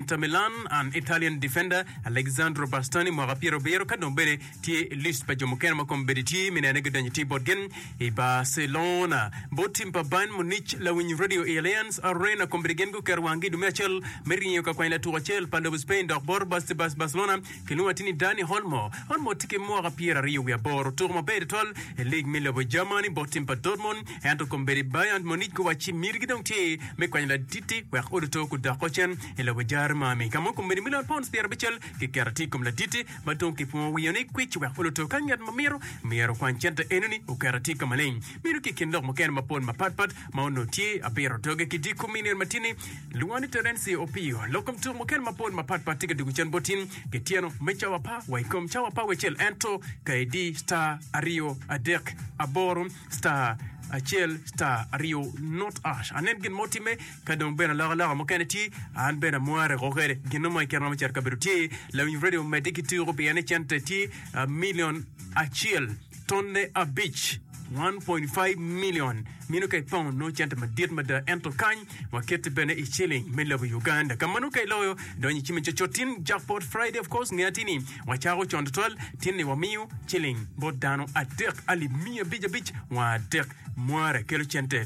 Inter Milan and Italian defender Alexandro Bastoni mwaka pyerabiro ka dong bene tye i list pa jo mukene ma kombeddi tye me nene gidonyo tir bot gen i Barcelona. Bot tim pa Bayern Munich, lawiny radio i Allianz Arena kombeddi gen guketo wanggi i dwe me acel me ringo ka kwany latuk acel pa lobo Spain dok bot Barcelona Kilwonga ti ni Danny Olmo. Olmo ti ki mwaka pyer ariyo wi aboro. Otuku maber tutwal i lig mi lobo Germany bot tim pa Dortmund ento kombeddi Bayern Munich guwacci mitigi dong tye me kwanyo laditi wek odo to ku dok ocen i lobo Jermani ka ma kombeddi milion pounds pyer abicel ki keto atir i kom laditi ma dong kipwongo wiyo ni kwic wek odo to ka ngat ma mito myero okwany cente enoni oketo atir ka maleng. Meno tye i kin lok mukene mapol mapatpat ma onongo tye abiro doge ki diko milion matini Lwongo ni Terence Opio. Lok kom tuk mukene mapol mapat pat tye ka dwogo cen boti ki tyeno me cawa pa wa i kom cawa pa wecel ento ka idi star aryo adek aboro star acel star aryo not ash anen gin mo timme ka dong bene aloko aloka mukene tye an bene amware ko kwede gin mo ikine romo cito kabedo tye lawiny radio medde ki tuko pien ni cente tye ah, milion acel. Tonne abic, 1.5 million, mino ka i pound nongo cente madit mada, ento kany wakette bene i ciling me lobo Uganda. Ka mano ka iloyo, donyo i cime coco tin jackpot Friday of course nge atir ni wacako con tutwal tin ni wamiyo ciling bot dano adek alip miya abic abic wa adek mware kelo cente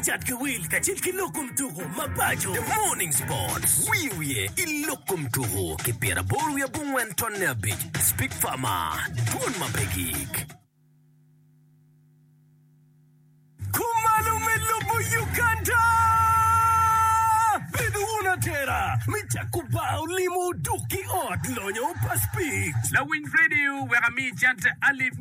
Cat ki wil kacel ki lok kom tuku mapaco. The Morning Sports, Wiyo wiye i lok kom tuku ki pyera aboro wiye abongwen tonne abic, Speak Farmer, Dwol ma pe gik. Kumalo me lobo Uganda! Bedo wun atera me cako bar olimo dok ki ot lonyo pa Speak. Lawiny Radio wek ami cente alip.